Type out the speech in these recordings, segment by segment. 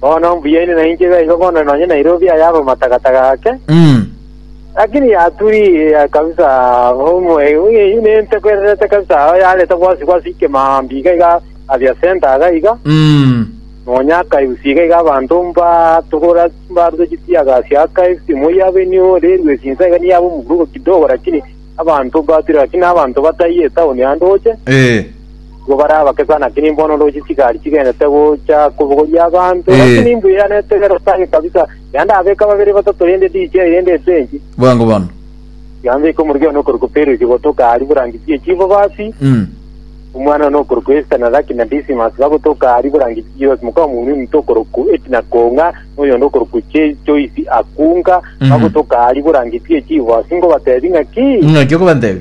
Bono mbuyaine nainche iga iga bono nonye Nairobi aye abe matagataga ake. Mm. Lakini yaturia kabisa omwe uye ine ntekwererete kabisa aho yareta gwasi gwasi kemambi iga iga abia center aga iga Mm. nonya akaibusi iga iga abanto mba tugora mbarwe chitiaga sia akaibusi moya beni ore rwesi nsa iga niabo muburugo kidogo lakini abanto batira lakini abanto bataye town ande oche Eh. Nigo barabake sana, lakini mbono ore chisikari chigenete gocha kobogoria abanto. Eh. Lakini imbuyanerete gerosange kabisa. Iga ndabeka babere batato rende ndiche aye rende esenchi. Bwango bono. Iga mbeke omorwio one okorokwa Perusi gotoka aria borangi bie chibobasi. Mm. Omwana one okorokwa Esta na Raki na Disimas bagotoka aria borangi Chios moka omonwe ominto okorokwa Etina Konga na oyonde okorokwa Che- Choisi Akunga Mhm. bagotoka aria borangi bie chibobasi ngobatebi ng'aki. Ng'aki okobantebi?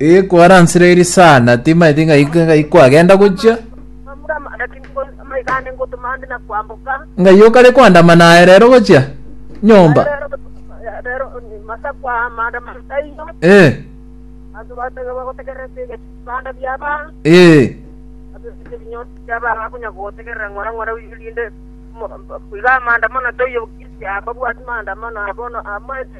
Ee, kwaransire eri sana, timaeti ng'aika ng'ai kwagenda gochia. Ng'ai okare kwandama naye rero gochia nyomba. Ee, ee,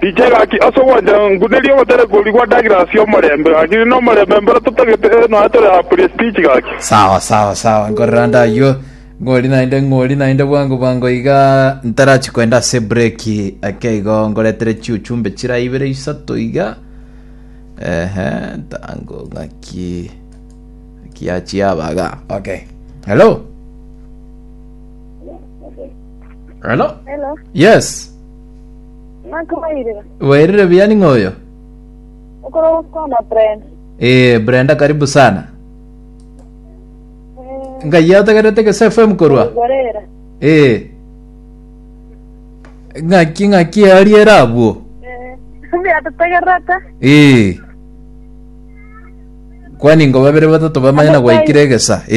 Rikia gaki ase ogwancha nkunerie ogotare korigwa Douglas omorembe, gaki ninde omorembe mbero totagete nonya tore a prestige gaki. Sawa sawa sawa nkorera nde aywo ng'ori naende ng'ori naende bwango bwango iga ntarachi koenda ase breki eke igo ngoretere chiuchumbe chira ibere isato iga ehe tango ng'aki ng'aki yachiabaga okay hello hello Hello. yes Ng'a nkobairire. Wairire buya ning'o oyo? Okora gokwana Brenda. Eh, Brenda karibu sana. Eh, Ngai otegerete Gese FM korwa. Gorera. Eh. Ng'aki ng'aki ariere abwo. Eh, mbuya tutegerete. Eh. Kwani ngo babere batato bamanya na gwaikire egesa. Eh.